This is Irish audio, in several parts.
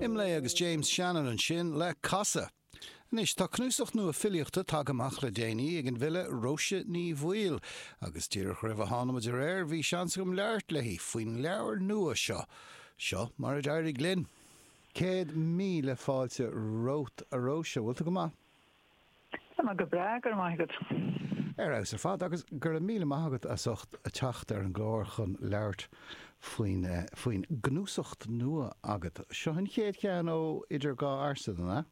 Imlé agus James Shannon ansin le casadh. Anois tá cnuasacht nua filíochta tagtha amach le déanaí ag an bhfile Róise Ní Bhaoill agus díreach roimh a tháinig muid ar aer bhí seans agam labhairt léi faoin leabhar nua seo. Seo mar a d'éirigh linn. Céad míle fáilte romhat a Róise, bhfuil tú go maith? Tá mé go breá, go raibh maith agat. Ar fheabhas ar fad, agus go raibh míle maith agat as ucht teacht ar an gclár chun labhairt faoin faoin gcnuasacht nua agat. Seo an chéad cheann ó Idir Dhá Ursain, an ea?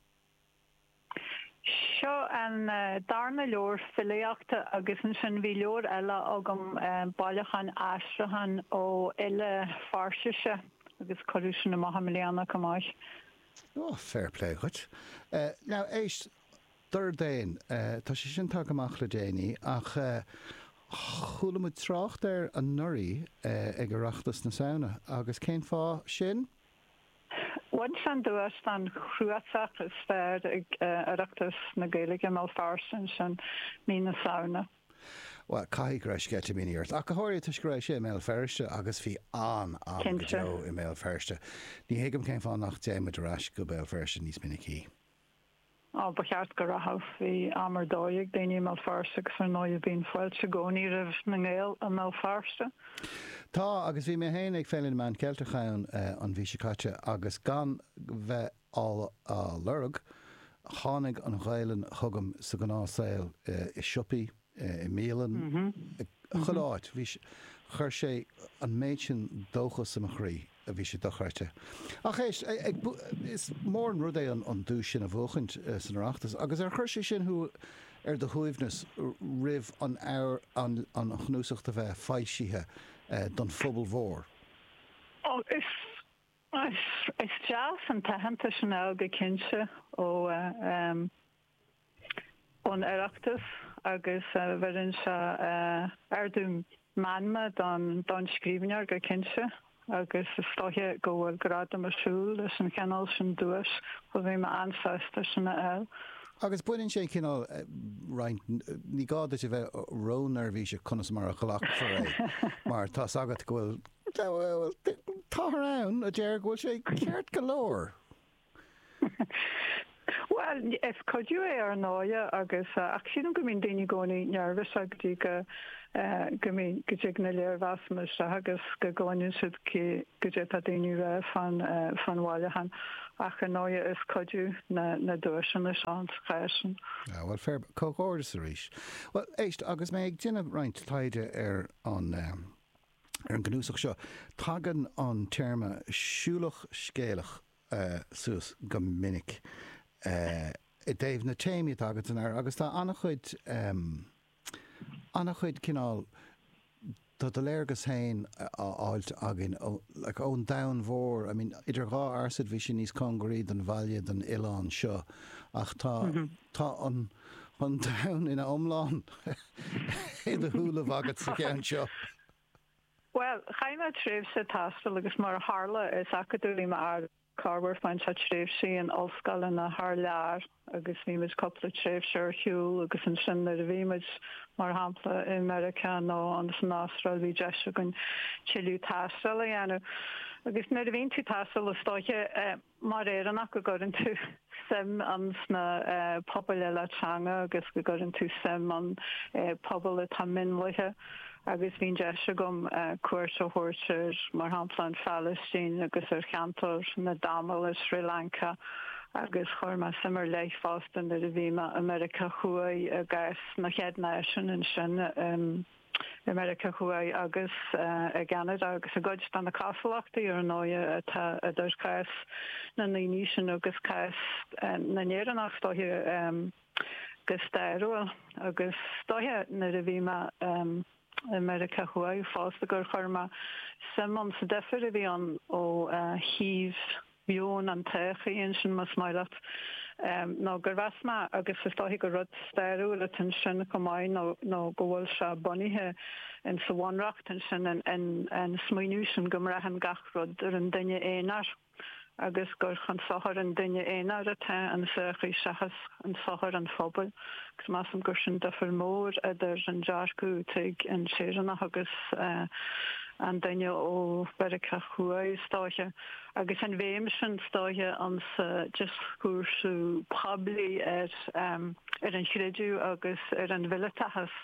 Seo an darna leabhar filíochta agus ansin bhí leabhar eile agam, bailiúchán aistriúchán ó fhile Fairsise agus cuireadh sin amach i mbliana chomh maith. Ó, fair play dhuit. Now, éist, Dordán, tá sé sin tagtha amach le déanaí ach chuala muid trácht air anuraidh ag Oireachtas na Samhna agus cén fáth sin? Bhain sé an duais don chnuasach is fearr ag Oireachtas na Gaeilge, i mBéal Feirste ansin mí na Samhna. Bhuel, caithfidh go raibh sceitimíní ort, ach go háirithe toisc go raibh sé i mBéal Feirste agus bhí an-am go deo i mBéal Feirste. Ní thuigim cén fáth nach dtéann muid ar ais go Béal Feirste níos minicí. Á, ba cheart go rachadh. Bhí am ar dóigh ag daoine i mBéal Feirste agus ar ndóigh bíonn fáilte i gcónaí roimh na nGael i mBéal Feirste. Tá, agus bhí mé féin ag Féile na Meán Ceilteach ann an mhí seo caite agus gan bheith á lorg. Tháinig an Ghaelainn chugam sa ghnáth saol, i siopaí, i mbialann, i chuile áit. Bhí, chuir sé an méid sin dóchas i mo chroí, bhí sé dochreidte. Ach éist, ag, is mór an rud é an duais sin a bhuachaint san Oireachtas agus ar chuir sé sin thú ar do shuaimhneas roimh an, an chnuasacht a bheith foilsithe don phobal mhór? Ó, is, Is deas an t-aitheantas sin a fháil go cinnte ón Oireachtas agus bheireann sé ardú meanma don scríbhneoir go cinnte agus is dóiche go bhfuil gradam ag siúl leis an chineál sin duais so bhí mé an-sásta sin a fháil. Agus baineann sé an cineál roinnt, ní gá duit a bheith ró-neirbhíseach conas mar a ghlacfar é mar tá's agat go bhfuil Táthar ann a deir go bhfuil sé ceart go leor. Bhuel, is cuidiú é ar ndóigh agus ach sílim go mbíonn daoine i gcónaí nervous go dtí go go mbíonn go dtig na léirmheasanna isteach agus go gcluineann siad goidé tá daoine a rá fán fán bhailiúchán ach ar ndóigh is cuidiú na na duaiseanna ins an chás sin. Ah bhuel fair, comhghairdeas arís. Bhuel éist, agus mé ag déanamh roinnt taighde ar an Ar an gcnuasach seo, tagann an téarma 'siúlach scéalach' suas go minic i dtaobh na téamaí atá agat ann agus tá an-chuid an-chuid cineál de do léargas féin á fháilt againn like ón domhan mhór I mean Idir Dhá Fhearsaid bhí sé níos cóngaraí don bhaile don oileán seo ach tá tá an an domhan ina iomlán i do shúile agat sa cheann seo. Bhuel, chaith mé tréimhse taistil agus mar a tharla, is acadóir í mo mháthair. Chaith muid roinnt tréimhsí in ollscoileanna thar lear agus bhí muid cúpla tréimhse ar shiúl agus ansin nuair a bhí muid, mar shampla, i Meiriceá nó insan Astráil, bhí deis againn tuilleadh taistil a dhéanamh. Agus nuair a bhíonn tú ag taisteal is dóiche eh. Mar Éireannach go gcuireann tú suim insna pobail eile teanga agus go gcuireann tú suim in pobail atá mionlaithe agus bhí an deis agam cuairt a thabhairt ar mar shampla an Phalaistín agus ar cheantar na dTamil i Sri Lanka agus chuir mé suim ar leith fosta nuair a bhí mé i Meiriceá Thuaidh i gcás na gCéad Náisiún ansin. I Meiriceá Thuaidh agus i gCeanada agus i gcuid de na castachtaí, ar ndóigh, atá idir chás na ndaoine sin agus cás na nÉireannach, is dóiche, go stairiúil. Agus is dóiche, nuair a bhí mé i Meiriceá Thuaidh fosta, gur chuir mé suim insa difir a bhí ann ó thaobh. meon an tsochaí ansin más maith leat nó gur mheas mé, agus is dóiche gur rud stairiúil atá ansin chomh maith nó go bhfuil sé bunaithe in sa bhunreacht ansin an smaoineamh sin go mbraitheann gach rud ar an duine aonair agus gur chun sochair an duine aonair atá an tsochaí seachas chun sochair an phobail agus measaim gur sin difir mór idir an dearcadh atá ag an Éireannach agus an duine ó Mheiriceá Thuaidh is dóiche. Agus an bhéim sin is dóiche insa dioscúrsa poiblí ar an chreideamh agus ar an mhileatachas,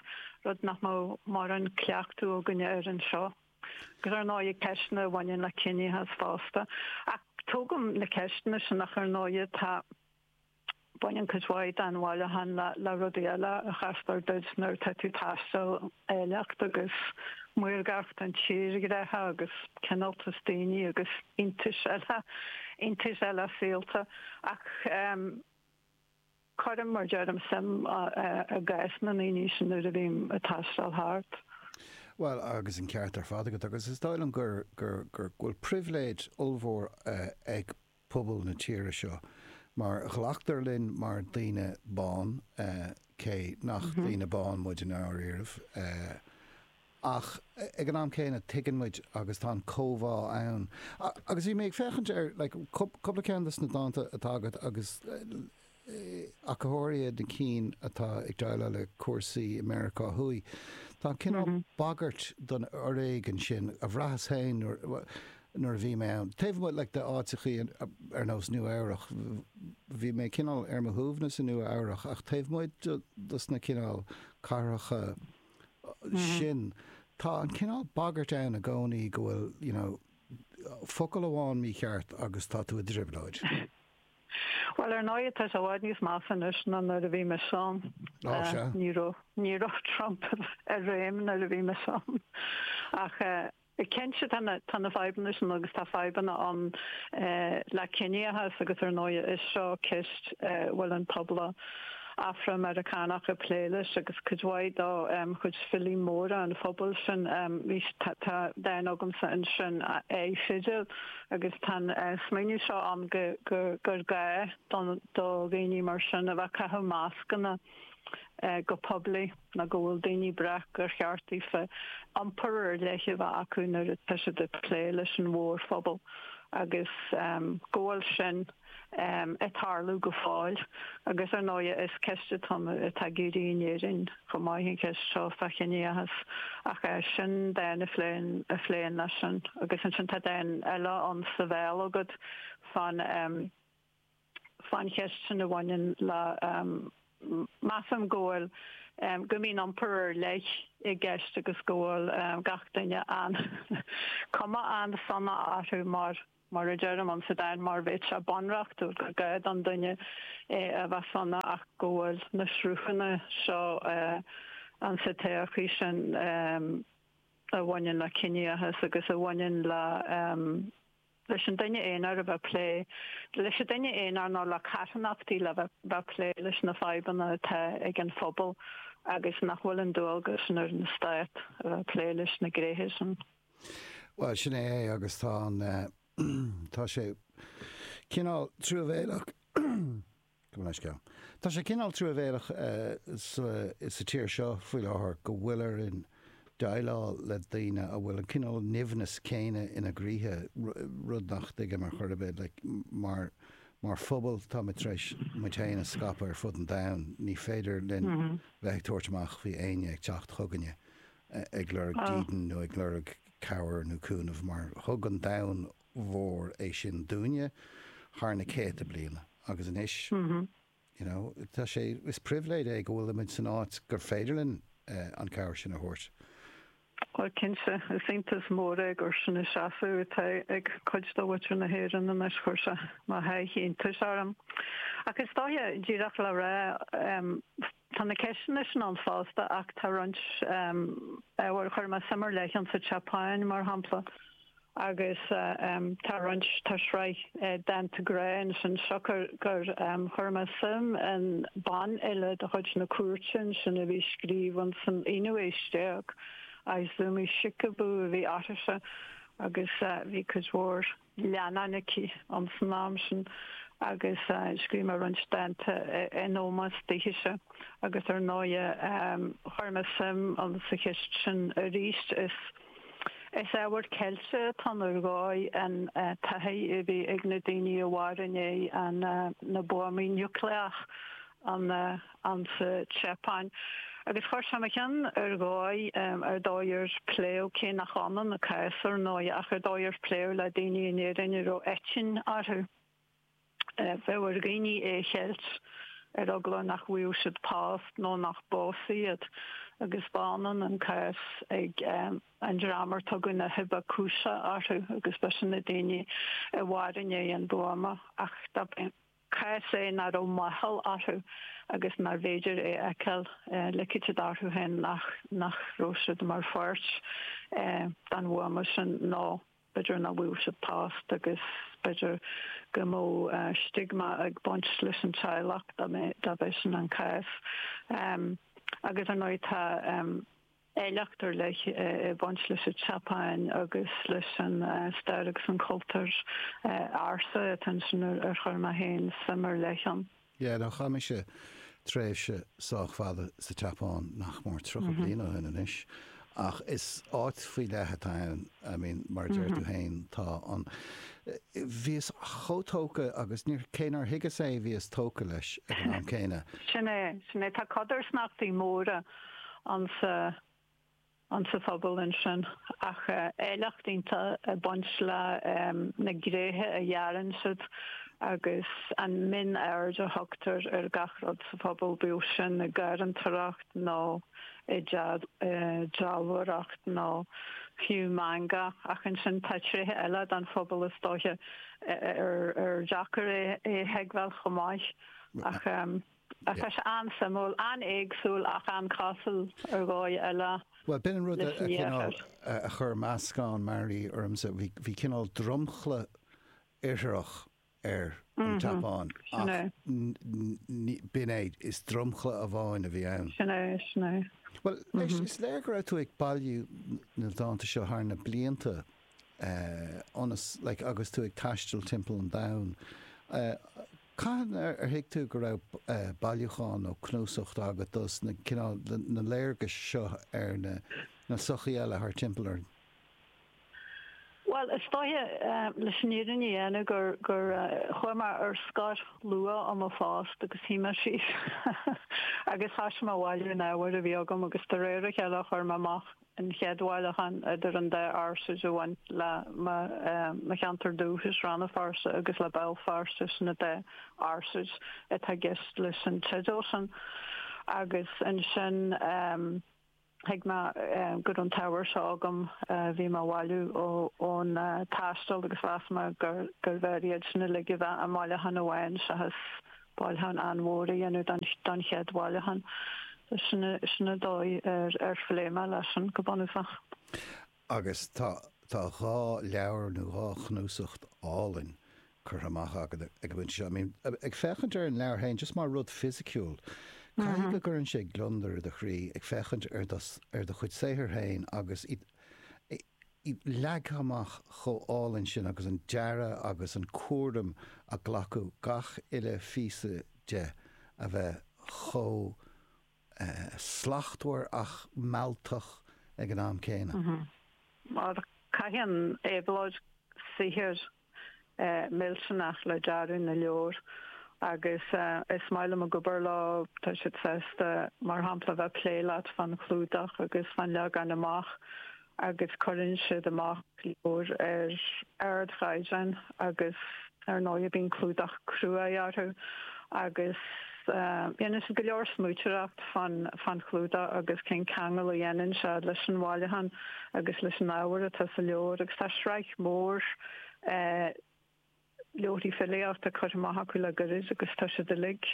rud nach mbeadh mórán cleachtadh againne air anseo, agus ar ndóigh ceisteanna a bhaineann le ciníochas fosta. Ach tógaim na ceisteanna sin, ach ar ndóigh tá. Baineann cuid mhaith den bhailiúchán le rudaí eile a chastar duit nuair atá tú ag taisteal, áilleacht agus maorgacht an tírdhreacha agus cineáltas daoine agus iontais eile, iontais eile saolta. Ach cuirim, mar deirim, suim i gcás na ndaoine sin nuair a bhím ag taisteal thart. Bhuel, agus an ceart ar fad agat, agus is dóigh liom go bhfuil pribhléid ollmhór ag pobal na tíre seo mar ghlactar linn mar daoine bán cé nach daoine bán muid i ndáiríribh ach ag an am céanna tuigeann muid agus tá an chomhbhá ann agus bhí mé ag féachaint ar like cúpla ceann des na dánta atá agat agus Ach go háirithe na cinn atá ag déileáil le cúrsaí Mheiriceá Thuaidh. Tá an cineál bagairt don fhoréigean sin a bhraitheas féin nuair a bhí mé ann. Taobh amuigh like de áiteachaí ar nós Nua Eabhrach, bhí mé cineál ar mo shuaimhneas i Nua Eabhrach ach taobh amuigh dos na cineál cathracha sin, tá an cineál bagairt ann i gcónaí go bhfuil you know focal amháin mícheart agus tá tú i dtrioblóid. Bhuel, ar ndóigh tá sé i bhfad níos measa anois ná nuair a bhí mise ann. Ní raibh, ní raibh Trump i réim nuair a bhí mise ann. Ach cinnte tá na, tá na fadhbanna sin agus tá fadhbanna ann le ciníochas agus ar ndóigh seo ceist a bhfuil an pobal Afra-Meiriceánach ag plé leis agus cuid mhaith de chuid filí móra an phobail sin, tá, tá, dán agamsa ansin, a fheiceáil. agus tá an smaoineamh seo ann gur gá do dhaoine mar sin a bheith ag caitheamh mascanna go poiblí nó go bhfuil daoine breac gur cheart daofa iompar ar leith a bheith acu nuair atá siad ag plé leis an mórphobal agus go bhfuil sin ag tarlú go fóill agus ar ndóigh is ceist atá ag éirí in Éirinn chomh maith an cheist seo fán chiníochas ach sin dán a phléann a phléann leis sin agus ansin tá dán eile ann is a bhfuil an fonn fán cheist sin a bhaineann le measaim go bhfuil go mbíonn iompar ar leith i gceist agus go bhfuil gach duine an cuma an-sona orthu mar Mar a deirim ann sa dán mar bheadh sé bunreachtúil gur gá don duine é a bheith sona ach go bhfuil na sruthanna seo ann sa tsochaí sin a bhaineann le ciníochas agus a bhaineann leis an duine aonair a bheith plé leis an duine aonair nó le carthanachtaí le bheith plé leis na fadhbanna atá ag an phobal agus nach bhfuil an dualgas sin ar an stát a bheith plé leis na gnéithe sin. Bhuel, sin é é agus tá an, tá sé cineál truamhéileach, go mbeidh sceam, tá sé cineál truamhéileach sa tír seo faoi láthair go bhfuil orainn déileáil le daoine a bhfuil an cineál nimhneas céanna ina gcroíthe, rud nach dtuigim ar chor ar bith, like, mar, mar phobal táimid tar éis muid féin a scaipeadh ar fud an domhain, ní féidir linn bheith ag tabhairt amach faoi éinne ag teacht chugainne ag lorg dídean nó ag lorg cabhair nó cúnamh mar thug an domhan mhór é sin dúinne thar na céadta bliana agus anois you know tá sé is pribhléid é go bhfuil muid san áit gur féidir linn an cabhair sin a thabhairt. Bhuel cinnte, is iontas mór é gur sin an seasamh atá ag cuid de mhuintir na hÉireann anois, chuir sé mo sháith iontais orm. Ach is dóiche, díreach le rá, Tá na ceisteanna sin ann fosta ach tá roinnt, abair, chuir mé suim ar leith sa tSeapáin mar shampla agus tá roinnt, tá sraith dánta grá ansin siocair gur chuir mé suim in bean eile de chuid na cúirte ansin a bhí ag scríobh insan aonú aois déag, Izumi Shikibu a bhí uirthise agus bhí cuid mhór. leannáin aici insan am sin agus scríobh mé roinnt dánta in ómós dithe-se agus ar ndóigh chuir mé suim sa cheist sin arís. Is ábhar ceilte atá nuair dhóigh an taithí a bhí ag na daoine a mhair i ndiaidh na buamaí niúcléach an insa tSeapáin agus chuir sé i mo cheann ar dhóigh ar dóigh ar pléadh cé nach ionann a cás ar ndóigh ach an dóigh ar pléadh le daoine in Éirinn a raibh eitinn orthu. B'éigean ar dhaoine é a cheilt ar eagla nach bhfaigheadh siad post nó nach bpósfaí iad agus ba ionann an cás ag an dream ar tugadh na hibakusha orthu agus b'shin na daoine a mhair i ndiaidh an bhuama ach cás é nach raibh máchail orthu agus nár bhféidir é a fheiceáil lig siad orthu féin nach raibh siad mar pháirt den bhuama sin nó b'fhéidir nach bhfaigheadh siad post agus b'fhéidir go mbeadh stigma ag baint leis an teaghlach dá mbeadh sin an cás agus ar ndóigh tá Áilleacht ar leith ag baint leis an tSeapáin agus leis an stair agus an cultúr ársa atá ansin ar chuir mé féin suim ar leith ann. Yeah, no, chaith mise tréimhse sách fada sa tSeapáin, nach mór tríocha bliain ó shin anois, ach is áit faoi leith atá ann, I mean, mar a deir tú féin, tá an, bhíos chomh tógtha agus níor, cé nár thuigeas í bhíos tógtha leis ag an am céanna. Sin é, sin é, tá codarsnachtaí móra insa insa phobal ansin ach áilleacht iontach ag baint le na gréithe a dhearann siad agus an mhionaird a thugtar ar gach rud sa phobal bíodh sin i ngarraíodóireacht nó i ndealbhóireacht nó fiú manga ach ansin tá tréithe eile den phobal is dóiche ar deacair é a thuigbheáil chomh maith ach Tá sé an-suimiúil, an-éagsúil ach an-chosúil ar dhóigh eile. Bhuel, b'in an rud a cineál a chuir meascán mearaí ormsa. Bhí cineál dromchla iartharach ar an tSeapáin ach b'in é, is dromchla amháin a bhí ann. Sin é, sin é. Bhuel, anois, is léir go raibh tú ag bailiú na dánta seo thar na blianta agus tú ag taisteal timpeall an domhain. Cathain ar thuig tú go raibh bailiúchán nó cnuasacht agat dos na cineál na léargais seo ar na sochaí eile thar timpeall orainn? Bhuel, is dóiche leis an fhírinne a dhéanamh gur gur chuaigh mé ar scor luath ó mo phost agus shuigh mé síos agus thosaigh mé a bhailiú an ábhair a bhí agam agus de réir a chéile a chuir mé amach an chéad bhailiúchán idir an dá fhearsaid a bhain le mo cheantar dúchais, Rann na Feirste, agus le Béal Feirste sin an dá fhearsaid atá i gceist leis an teideal sin. Agus ansin thuig mé go raibh an t-ábhar seo agam a bhí mé a bhailiú ón taisteal agus mheas mé gurbh fhearr iad sin uilig a bheith i mbailiúchán amháin seachas bailiúchán an-mhór a dhéanamh don chéad bhailiúchán. Sin an dóigh ar phléigh mé leis sin go bunúsach. Agus tá dhá leabhar nó dhá chnuasacht álainn curtha amach agat ag an bpointe seo. I mean, ag féachaint ar an leabhar féin, just mar rud fisiciúil, caithfidh go gcuireann sé gliondar i do chroí ag féachaint ar do chuid saothair féin agus í leagtha amach chomh álainn sin agus an dearadh agus an cúram a glacadh gach uile phíosa de a bheith chomh slachtmhar ach mealltach ag an am céanna. Caitheann Éabhlóid saothar millteanach le dearadh na leabhar agus is maith liom a bheith ag obair leo, tá siad sásta mar shampla bheith ag plé leat fán chlúdach agus fán leagan amach agus cuireann siad amach leabhair ar ardchaighdeán agus ar ndóigh bíonn clúdach cruaidh orthu agus Dhéanann siad go leor smaointeoireacht fán chlúdach agus cén ceangal a dhéanann siad leis an bhailiúchán agus leis an ábhar atá sa leabhar agus tá sraith mhór leabharthaí filíochta curtha amach acu le gairid agus tá siad uilig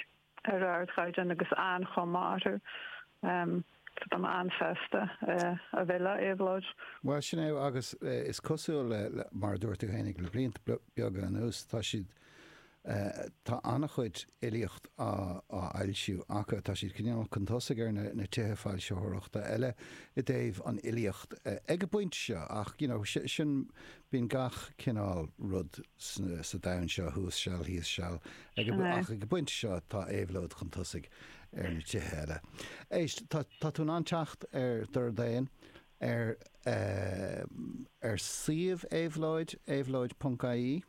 ar ardchaighdeán agus an-chuma mhaith orthu. Tá am ann feasta a bheith le Éabhlóid. Bhuel, sin é agus is cosúil le, mar a dúirt tú fhéinig le blianta beaga anuas, tá siad, tá an-chuid fhilíocht á fhoilsiú acu, tá siad cineál chun tosaigh ar na tithe foilsitheoireachta eile i dtaobh an fhilíocht ag an bpointe seo ach, you know, sin, bíonn gach cineál rud sa domhan seo, thuas seal, thíos seal, ag an, ach ag an bpointe seo tá Éabhlóid chun tosaigh. ar na tithe eile. Éist, tá tú in ann teacht ar Dordán ar ar suíomh Éabhlóid, éabhlóid.ie.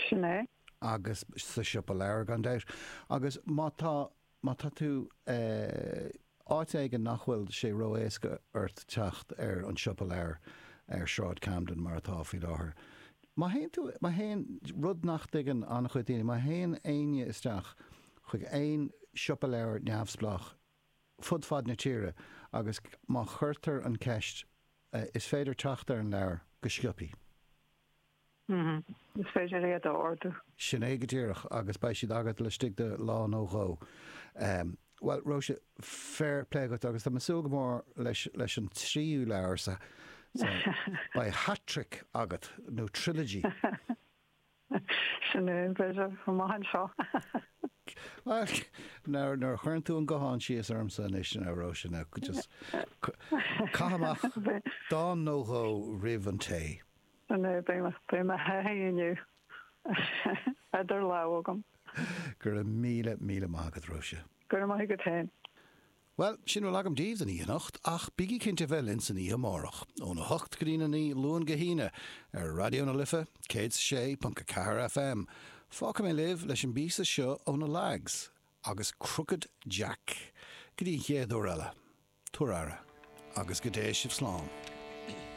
Sin é. agus sa siopa leabhar gan dabht agus má tá má tá tú eh, Áit éigin nach bhfuil sé ró-éasca ort teacht ar an siopa leabhar ar Sráid Camden mar atá faoi láthair. Má théann tú, má théann, rud nach dtuigeann an-chuid daoine, má théann éinne isteach chuig aon siopa leabhar neamhspleách fud fad na tíre agus má chuirtear an cheist is féidir teacht ar an leabhar go sciopthaí. Hm, is féidir iad a ordú. Sin é go díreach agus beidh siad agat laistigh de lá nó dhó. Bhuel, Róise, féar plé agat agus tá mé súil go mór leis an tríú leabhar sa, beidh hat-trick agat, nó trilogy. Sin é, b'fhéidir, chomh maith anseo. Bhuel, nuair a chuireann tú an guthán síos ormsa anois, Róise, now just caith amach dán nó dhó roimh an tae. Sin é, beidh mo thaithí inniu idir lámha agam. Go raibh míle, míle maith agat, Róise. Go raibh maith agat féin. Bhuel, sin a bhfuil agam daoibh don oíche anocht, ach bígí cinnte a bheith linn san oíche amárach, óna hocht go dtí'n a naoi, Luan go hAoine, ar Raidió na Life, céad is a sé ponc a ceathair FM. Fágfaidh mé libh leis an bpíosa seo ó na Lags, agus Crooked Jack. Go dtí an chéad uair eile, tabhair aire, agus go dté sibh slán.